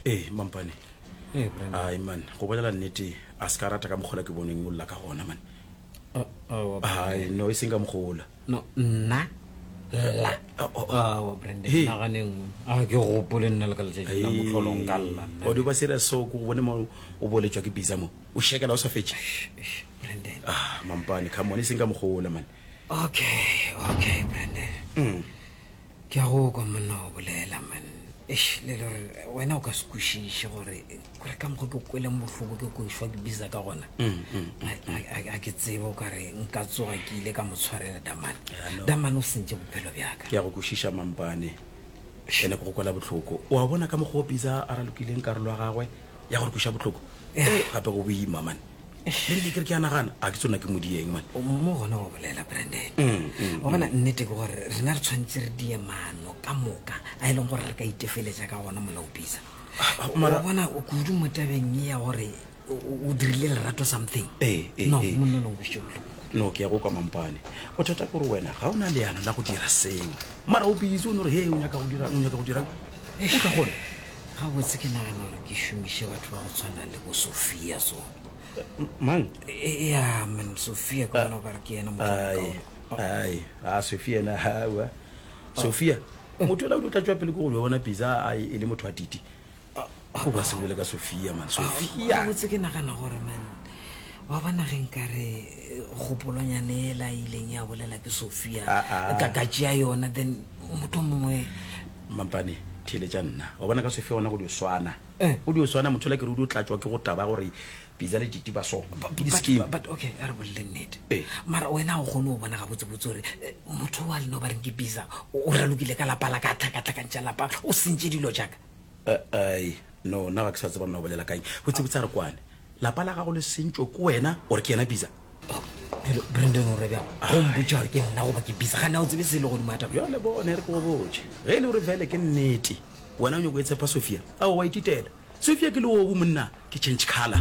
ee mampane Hey, Brenda. ai man go bolela nnete a se ka rata ka mokgola ke boneng o lla ka gona man Oh, oh, ai no e seng ka mokgola no nna lla Oh, oh, oh. awa branden Hey. nagane nngwe a ke gopole nna le ka letšatši la motlholong ka lla nna. o di ba serious so ko go bone mo o boletswa ke bisa mo o shekela o sa fetše Eish, branden ah mampane come on e seng ka mokgola man Okay, okay, Brande. Mm. Ke a go kwa monna go bolela, man. Eish, le le re, wena o ka se kwešiše gore gore ka mokgwa ke kweleng bohloko ke kwešwa ke biza ka gona. Mm, mm, mm, A- a- a- A ke tsebe o ka re nka tsoga ke ile ka mo tshwarela Damane. Yeah, I know. Damane o sentše bophelo bjaka. ke ya go kwešiša mampane ene ke go kwela bohloko o a bona ka mokgwa o bisa a ralokileng karolo ya gagwe ya gore kweša bohloko Yeah. Eh, gape go boima mane Mary ke kere ke a nagana a ke tsona ke mo dieng mane O mo gona go bolela branden wa bona nnete ke gore rena re tshwanetse re die maano ka moka a e leng gore re ka itefeletsa ka gona molaopisa Ah, mara- wa bona o kudu mo tabeng e ya gore o- o o dirile lerato something Ee, ee, no ee. monna lo nkweše bohloko no ke ya go kwa mampane bothata kore wena ga o na leano la go dira seo mara o busy o ne gore he o nyaka go dira o nyaka go dira o ka gone ga botse ke nagana gore ke šomiše batho ba go tshwana le bo sophia so mang ya man sophia ka gona gore ke yena ai a sophia na gawa sophia motho ela o di o tla tswa pele ko go yona pisa a e le motho wa titi go ba sebole ka sophia man sophia botse ke nagana gore man wa bona ge nkare kgopolonyane ela ileng ya bolela ke sophia ka ka tšea yona then motho mongwe Mampane, theeletša nna. Wa bona ka se fe gona go di o swana. Go di o swana, mothola ke re o di o tlatšwa ke go taba gore Piza le Titi ba so. Ke di scheme. But okay, a re bolele nnete. Mara wena ga o kgone go bona gabotsebotse gore eh, motho wa lena o ba reng ke Piza o ralokile ka lapa la ka a tlhakatlhakantša lapa o sentše dilo jaka. Ai, no, nna ga ke sa tseba mna o bolela kang. Botsebotse a re kwane. lapa la gago le sentšwe ko wena gore ke yena bisa brandon o rebja gompotša gore ke nna goba ke bisa ga nna o tsebe se le godimo ataba jale bone re ke go botše ge e le gore fele ke nnete wena o nyako e tshepa sophia ao wa ititela sophia ke leobu monna ke change color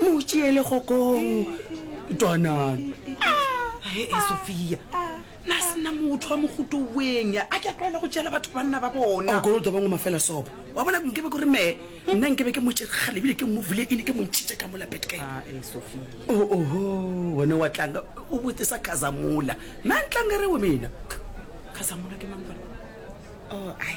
mo tšeele kgokong twanang e e sofia na sena motho wa mogoto weng a ke a tlwaela go tšeela batho banna ba bona o kolota bangwe mafela sopo wa bona nkebe kore me nna nkebe ke motšegale ebile ke movule ene ke montšhitše ka mola betkae ah, e sofia oh, oho one wa tlanga o bote sa khazamola na ntlanga re o mena khazamola ke mang oh, ai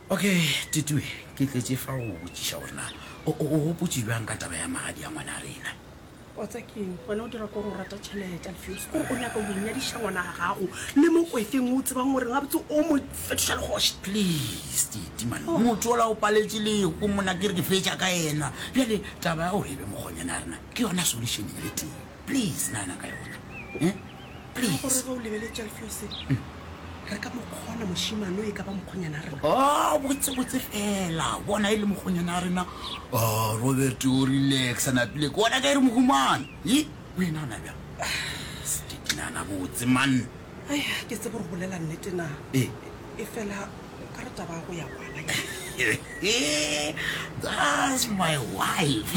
Ok, Tutu, ke tletše fa go go botšiša gore na o, o, o gopotše bjang ka taba ya magadi a ngwana a rena. Wa tsa keng, wena o dira kore o rata tšhelete, Alfios, kore o nyaka go inyadiša ngwana a gago le mo kwefeng o tsebang goreng gabotse o mo fetoša le kgoši. Please, Titi, man, Oh. motho ola o paletše lego mona, ke re ke fetša ka yena. Bjale taba ya gore e be mokgonyana ya rena ke yona solution ye tee. Please nana ka yona eh please. Ga gore ga o lebeletša lefelo se mm. re ka mokgona mošimano e ka ba mokgonyana rena. Oh botse botse fela bona e le mokgonyana rena. Oh Robert o relax na pile ke bona ka ere mohumane. Yi o ena na bja. Stiki nana botse man. Ai ke tse bore bolela nnete na. Eh e fela ka re taba ya go ya kwana that's my wife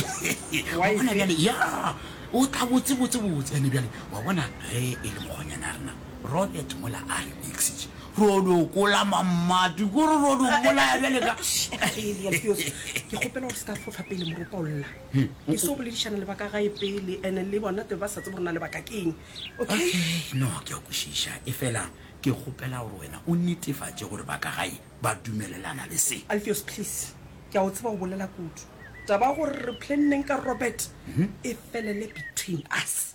wa bona bjale ya o tla botse botse botse ene bjale wa bona ge e le mokgonyana a rena robert mola a re mixitše rodokola mamati ko re rodokolaya bjale ka ke kgopela gore se ka fofa pele moropa o lla hmm. e se o boledišana le baka gae pele ene le bona te ba sa tse borena le baka keng okay no ke a kwešiša e fela Ke kgopela gore wena o netefatše gore ba ka gae ba dumelelana le se. Alpheus, Please, ke a go tseba o bolela kudu. Taba ya gore re planneng ka Robert e felele between us.